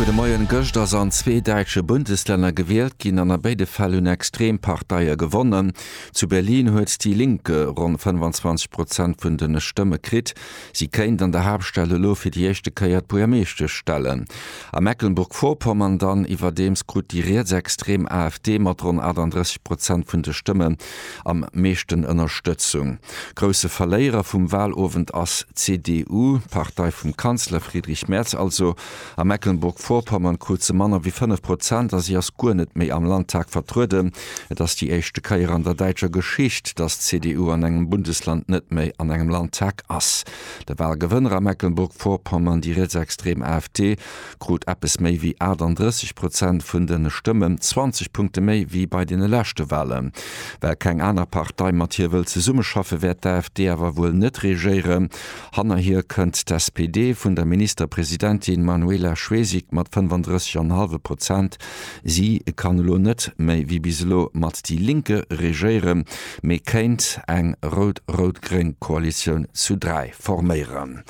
Gudde Moien, Gëscht ass an zwee däitsche Bundeslänner gewielt ginn an a béide Fäll hunn extrem Parteie gewonnen. Zu Berlin huet déi Linke ronn 25 Prozent vun de Stëmme kritt. Si kéint an der Haaptstad elo fir déi éischte Kéier d'Buermeeschtesch stellen. A Mecklenburg-Vorpommern dann iwwerdeems krut déi rietsextrem AfD mat ronn 38 Prozent vun de Stëmme am meeschten Ënnerstëtzung. Grousse Verléierer vum Wahlowend ass d'CDU, d'Partei vum Kanzler Friedrich Merz also. A Mecklenburg-Vorpommern krut se manner wéi 5 Prozent a si ass guer net méi am Landtag vertrueden. Et ass déi éischte Kéier an der däitscher Geschicht, datt d'CDU an engem Bundesland net méi an engem Landtag ass. De Wahlgewënner a Mecklenburg-Vorpommern, déi rietsextrem AfD, krut eppes méi wéi 38 Prozent vun de Stëmmen, 20 Punkte méi wéi bei deene leschte Walen. Well keng aner Partei mat hir wëll zesummeschaffe wäert d'AfD awer wuel net regéieren. Hanner hir kënnt d'SPD vun der Ministerpresidentin Manuela Schwesig mat 35,5 Prozent. Si kann elo net méi wéi bis elo mat déi Linke regéieren, mee kéint eng rout-rout-gréng Koalitioun zu dräi forméieren.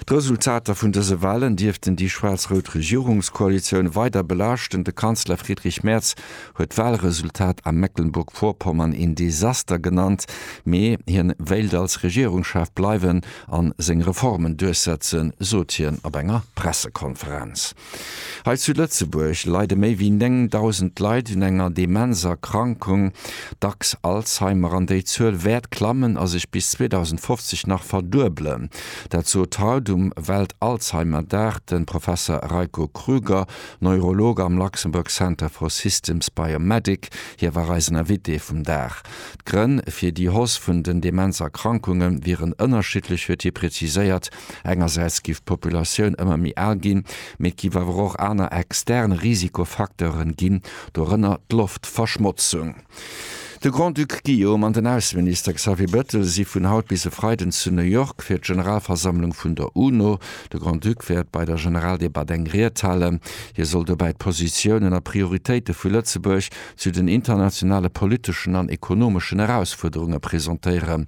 D'Resultater vun dëse Wahlen dierften déi schwaarz-rout Regierungskoalitioun weider belaaschten. De Kanzler Friedrich Merz huet d'Wahlresultat a Mecklenburg-Vorpommern een Desaster genannt, mee hien wéilt als Regierungschef bleiwen an seng Reformen duerchsetzen, sot hien op enger Pressekonferenz. Hei zu Lëtzebuerg leide méi wéi 9.000 Leit un enger Demenzerkrankung, dacks Alzheimer, an déi Zuel wäert klammen a sech bis 2050 nach verduebelen. Dat sot haut um Welt-Alzheimer-Dag de Professer Reiko Krüger, Neurolog am Luxembourg Center for Systems Biomedic. Hie war eisen Invité vum Dag. D'Grënn fir déi Hausse vun den Demenzerkrankunge wieren ënnerschiddlech, huet hie preziséiert. Engersäits giff d'Populatioun ëmmer méi al ginn, mee et giff awer och aner extern Risikofacteuren ginn, dorënner d'Loftverschmotzung. De Grand-Duc Guillaume an den Ausseminister Xavier Bettel si vun haut bis e Freiden zu New York fir d'Generalversammlung vun der UNO. De Grand-Duc wäert bei der Generaldebatt eng Ried halen. Hie soll dobäi d'Positiounen a Prioritéite vu Lëtzebuerg zu den internationale politeschen an ekonomeschen Erausfuerderunge presentéieren.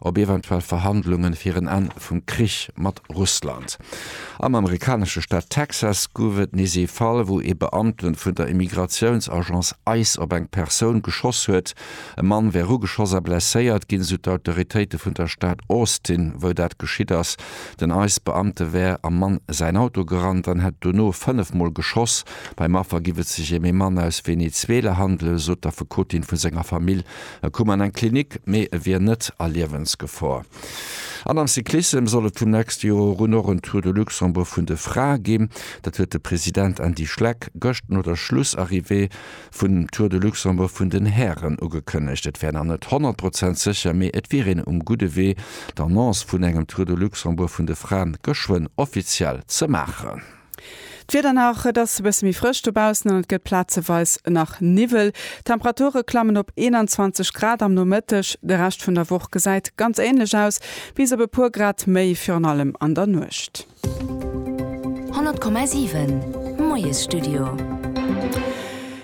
op eventuell Verhandlungen fir en Enn vum Krich mat Russland. Am amerikanesche Staat Texas gouf et nees ee Fall, wou ee Beamte vun der Immigratiounsagence ice op eng Persoun geschoss huet. E Mann wär ugeschoss a blesséiert ginn, sou d'Autoritéite vun der Stad Austin, wou dat geschitt ass. Den ice-Beamte wär am Mann säin Auto gerannt an hätt dono fënnef Mol geschoss. Beim Affer giff et sech ém ee Mann aus Venezuela handelen, sot d'Affekotin vu senger Famill. E koum an eng Klinik, mee e wier net a Liewensgefor. An am Cyclissem soll et vum nächste Joer un och en Tour de Luxembourg vun de Frae ginn. Dat huet de President Andy Schleck gëscht no der Schlussarrivée vun Tour de Luxembourg vun den Hären ugekënnegt. Et wär nach net 100 Prozent sécher, mee et wier een um gudde Wee, d'Annonce vun engem Tour de Luxembourg vun de Frae geschwënn offiziell ze maachen. D'Wieder nach, Et ass e bësse méi frësch dobaussen an et gëtt plazeweis nach Niwwel. D'Temperature klammen op 21 Grad am Nomëtteg. De Rescht vun der Woch gesäit ganz änlech aus, bis op e puer Grad méi, virun allem an der Nuecht. 100,7 Moiesstudio.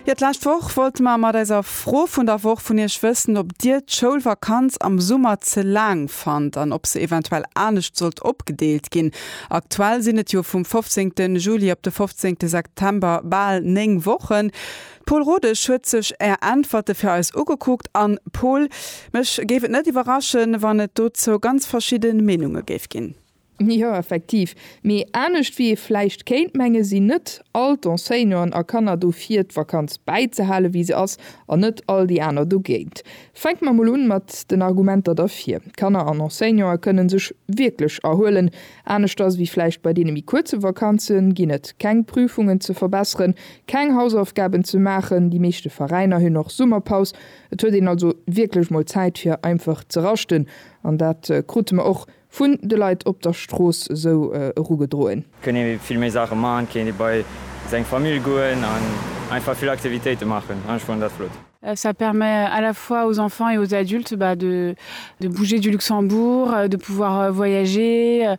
Jo, d'lescht Woch wollte mer mat eiser Fro vun der Woch vun Iech wëssen, ob Dir d'Schoulvakanz am Summer ze laang fannt an ob se eventuell anescht sollt opgedeelt ginn. Aktuell sinn et jo vum 15 Juli op de 15 September bal 9 Wochen. D'Pol Rodesch huet sech Är Äntwerte fir eis ugekuckt an, Pol, mech géif et net iwwerraschen, wann et dozou ganz verschidde Meenunge géif ginn. Jo, effektiv. Mee anescht wéi ee vläicht kéint mengen, sinn net all d'Enseignanten a Kanner dofir d'Vakanz bäizehalen, wéi se ass, an net all déi aner dogéint. Fänke mer mol un mat den Argumenter derfir, Kanner an Enseignante kënne sech wierklech erhuelen. Aneschters wéi vläicht bei deene méi kuerze Vakanze ginn et keng Prüfungen ze verbesseren, keng Hausaufgaben ze maachen. Déi meeschte Veräiner hunn och Summerpaus. Et huet een also wierklech mol Zäit fir einfach ze raschten. An dat krute mer och Vun de Leit op der Strooss esou erugedroen. Kënnt ee vill méi Saache man, kéint ee bei seng Famill goen an einfach vill Aktivitéite maachen an ech fannen dat flott. Ça permet à la fois aux enfants et aux adultes bah de de bouger du Luxembourg, de pouvoir voyager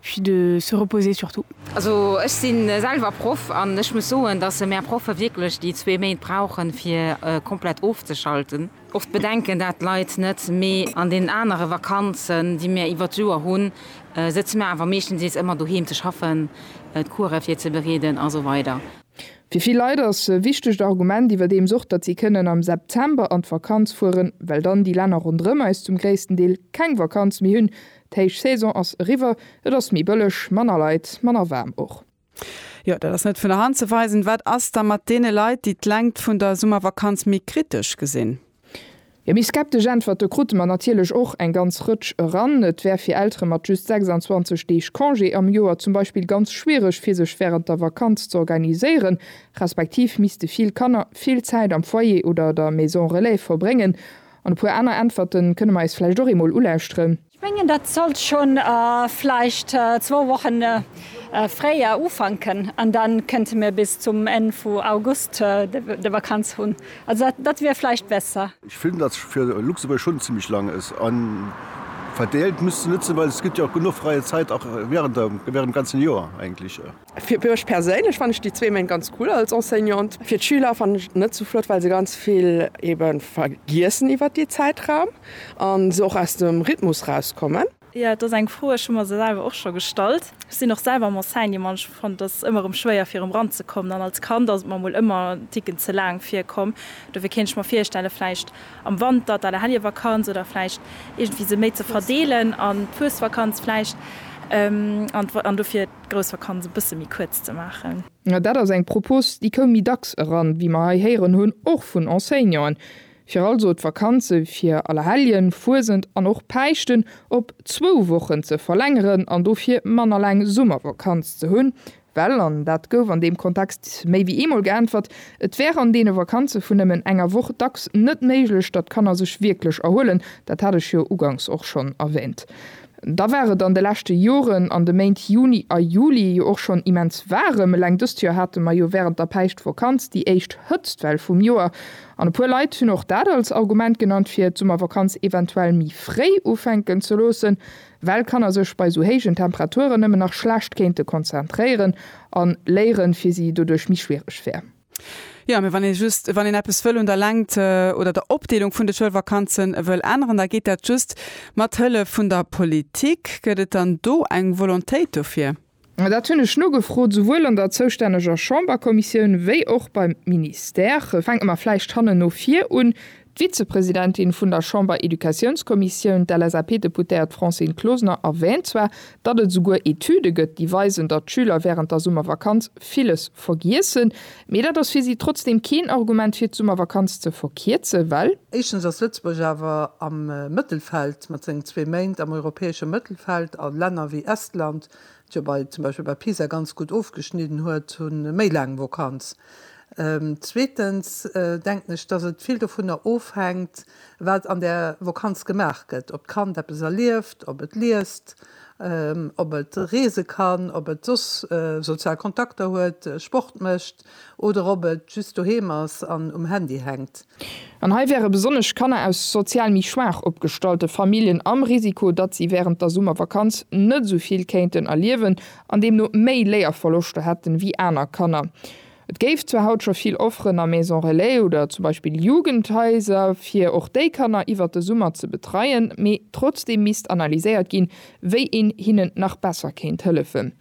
puis de se reposer surtout. Also ech si selwer Proff an ech muss soen, dass mär Proffe wierklech déi zwee Méint brauchen, fir komplett ofzeschalten. Och d'Bedenken, dat leit net, mee an deenen anere Vakanzen, déi mir iwwert d'Joer hunn, sëtze mir awer meeschtens nees ëmmer doheem ze schaffen, d'Course virzebereeden a sou weider. Fir vill Leit ass e wichtegt Argument iwwerdeems och, datt si kënnen am September an d'Vakanz fueren, well dann déi Länner ronderëm eis zum gréissten Deel keng Vakanz méi hunn. D'Héichsaison ass eriwwer, et ass méi bëlleg, manner Leit, manner waarm och. Jo, dat ass net vun der Hand ze weisen. Wat ass da mat deene Leit, déi d'Längt vun der Summervakanz méi kritesch gesinn? Jo, méi skeptesch Äntwerte krute mer natierlech och eng ganz Rëtsch eran. Et wär fir Eltere mat just 26 Deeg Congé am Joer zum Beispill ganz schwiereg, fir sech wärend der Vakanz z'organiséieren, respektiv misste vill Kanner vill Zäit am Foyer oder der Maison relais verbréngen. An e puer aner Äntwerte kënne mer eis vläicht och eemol ulauschteren. Ech mengen, dat sollt scho vläicht zwou Woche fréier ufanken an da kënnte mir bis zum Enn vu August de Vakanz hunn. Also dat wier vläicht besser. Ech fillen dat fir Luxemburg schon zimmlech lang ës an verdeelt misst se nützen, well ës gëtt jo och genuch freie Zäit och während dem ganzen Joer eigentlich. Fir mech perséinlech fannen ech déi zwee Méint ganz cool als Enseignant. Fir d'Schüler fannen ech et net sou flott, well se ganz vill eben vergiessen iwwert dee Zäitraum an se och aus dem Rhythmus rauskommen. Jo, et ass eng Fro, ech hu mer se selwer och scho gestallt. Ech sinn och selwer am Enseignement an ech fannen et ëmmer erëm schwéier fir erëm ranzekommen an als Kand ass et mer mol ëmmer en Ticken ze laang virkomm. Dofir kéint ech mer virstellen vläicht am Wanter d'Aler Hellier Vakanz oder vläicht iergendwéi se méi ze verdeelen an d'Fuesvakanz vläicht an dofir. d'Groussvakanz e bësse méi kuerz ze maachen. Dat ass eng Propos, déi koum méi dacks eran, wéi mer hei héieren hunn, och vun Enseignanten, fir also d'Vakanze fir Allerhelljen, Fuesent an och Päischten op zwou Wochen ze verlängeren an dofir manner laang Summervakanz ze hunn, well, an dat gouf an deem Kontext méi wéi eemol geäntwert, et wär an deene Vakanze vun nëmmen enger Woch dacks net méiglech, datt d'Kanner sech wierklech erhuelen. Dat hat ech jo uganks och schonn erwäänt. Da war et an de leschte Joren an de Méint Juni a Juli jo och schonn immens waarem. Eleng dëst Joer hate mer jo wärend der Päischtvakanz déi éischt Hëtztwell vum Joer. An e puer Leit hunn och dat als Argument genannt, fir d'Summervakanz eventuell méi fréi ufänken ze loossen, well Kanner sech bei esou héijen Temperaturen nëmmen nach schlecht kéinte konzentréieren a léieren fir si doduerch méi schwiereg wär. Jo, mee wann ee just, wann een eppes wëll un der Längt oder der Opdeelung vun de Schoulvakanze wëll änneren, da geet dat just mat Hëllef vun der Politik. Gëtt et dann do eng Volontéit dofir? Dat hunn ech nogefrot, esouwuel an der zoustänneger Chamberkommissioun wéi och beim Ministère. Fänke mer vläicht hannen no vir un. D'Vizepresidentin vun der Chamber-Educatiounskommissioun, d'LSAP-Deputéiert Francine Closener, erwäänt zwar, datt et esouguer Etüde gëtt, déi weisen, datt d'Schüler wärend der Summervakanz villes vergiessen. Mee dat ass fir si trotzdeem keen Argument, fir d'Summervakanz ze verkierzen, well. Éischtens ass Lëtzebuerg awer am Mëttelfeld mat sengen zwee Méint am europäesche Mëttelfeld, a Länner wéi Estland, dat jo bei zum Beispill bei PISA ganz gutt ofgeschnidden huet, hu méi laang Vakanz. Zweetens denken ech, dass et vill dovunner ofhänkt, wat an där Vakanz gemaach gëtt, ob d'Kand eppes erlieft, ob et liest, ob et reese kann, ob et soss sozial Kontakter huet, Sport mécht oder ob et just doheem ass an um Handy hänkt. An hei wäre besonnesch Kanner aus sozial méi schwaach opgestallte Familljen am Risiko, datt si wärend der Summervakanz net esou vill kéinten erliewen an deemno méi Léierverloschter hätten, wéi aner Kanner. Et géif zwar haut scho vill Offeren a Maison Relais oder zum Beispill Jugendhaiser, fir och déi Kanner iwwert de Summer ze betreien, mee trotzdeem misst analyséiert ginn, wéi een hinnen nach besser kéint hëllefen.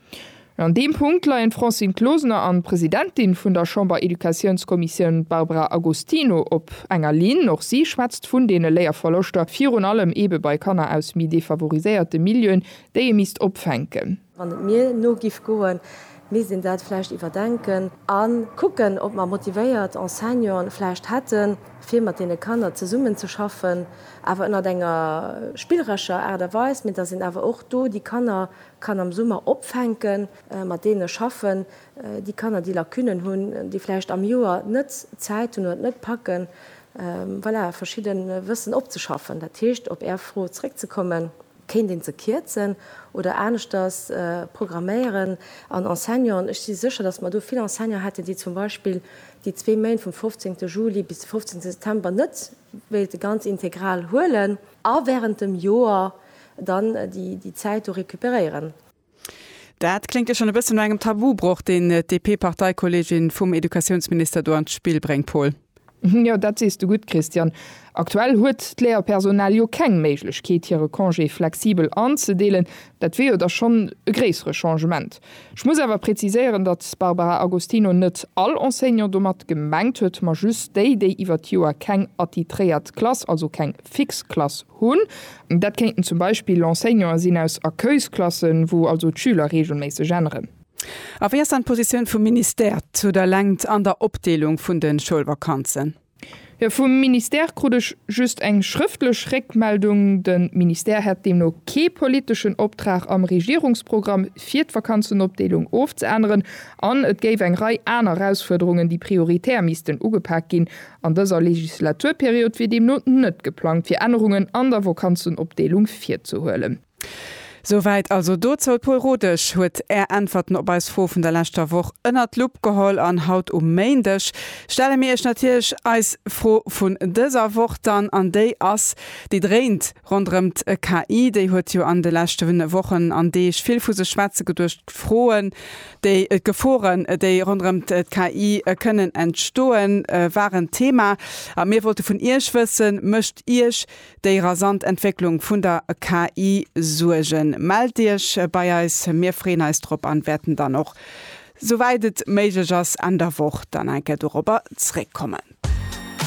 An deem Punkt leien d'Francine Closener an d'Presidentin vun der Chamber-Educatiounskommissioun Barbara Agostino op enger Linn. Och si schwätzt vun deene Léierverloschter, virun allem eebe bei Kanner aus méi defavoriséierte Milieuen, déi ee misst opfänken. Wann et mir no giff goen, misst een dat vläicht iwwerdenken a kucken, ob mer motivéiert Enseignanten vläicht hätten, fir mat deene Kanner zesummen ze schaffen, awer ënnert enger spillerescher Aart a Weis, mee datt een awer och do déi Kanner kann am Summer opfänken, mat deene schaffen, déi Kanner, déi Lacunen hunn, déi vläicht am Joer net Zäit hunn oder et net packen, voilà, verschidde Wëssen opzeschaffen. Dat heescht, op Är Fro zréckzekommen. Kéint een se kierzen oder aneschters programméieren an Enseignanten, ech si sécher, datt mer do vill Enseignanten hätten, déi zum Beispill déi zwee Méint vum 15 Juli bis de 15 September net wéilte ganz integral huelen a während dem Joer dann déi Zäit do récupéréieren. Dat kléngt jo schonn e bësse no engem Tabubroch, deen d'DP-Parteikolleegin vum Educatiounsminister do an d'Spill bréngt, Paul. Jo, dat sees de gutt, Christian. Aktuell huet d'Léierpersonal jo keng Méiglechkeet, hire Congé flexibel anzedeelen. Dat wier jo da schonn e gréissere Changement. Ech muss awer preziséieren, datt d'Barbara Agostino net all Enseignant domat gemengt huet, ma just déi, déi iwwer d'Joer keng attitréiert Klass, also keng fix Klass Hunn. Dat kéinten zum Beispill Enseignanten sinn aus Accueilsklassen, wou also d'Schüler reegelméisseg änneren. A wéi ass dann d'Positioun vum Ministère zu der Längt an der Opdeelung vun de Schoulvakanzen? Jo, vum Ministère krut ech just eng schrëftlech Réckmeldung. De Ministère hätt deemno kee politeschen Optrag am Regierungsprogramm fir d'Vakanzenopdeelung ofzeänneren an et géif eng Rei aner Erausfuerderungen, déi prioritär missten ugepak ginn An dëser Legislaturperiod wier deemno net geplangt, fir Ännerungen an der Vokanzenopdeelung virzehuelen. Souwäit also dozou. D'Paul Rodesch huet Är Äntwerten op eis Fro vun der leschter Woch ënnert d'Lupp geholl an haut um Méindeg stelle mir Iech natierlech eis Fro vun dëser Woch dann. An déi ass, déi dréint Ronderëm d'KI, déi huet jo an de leschten Wochen an Deeg vill vu sech schwätze geduecht. D'Froen, déi, d'Geforen, déi ronderëm d'KI kënnen entstoen, waren Thema. A mir wollte vun Iech wëssen, Mécht Iech déi rasant Entwécklung vun der KI Suergen? Mellt Iech bei eis, mir freeën eis drop an wäerten dann och, souwäit et méiglech ass, Enn der Woch dann eng Kéier dorobber zréckkommen.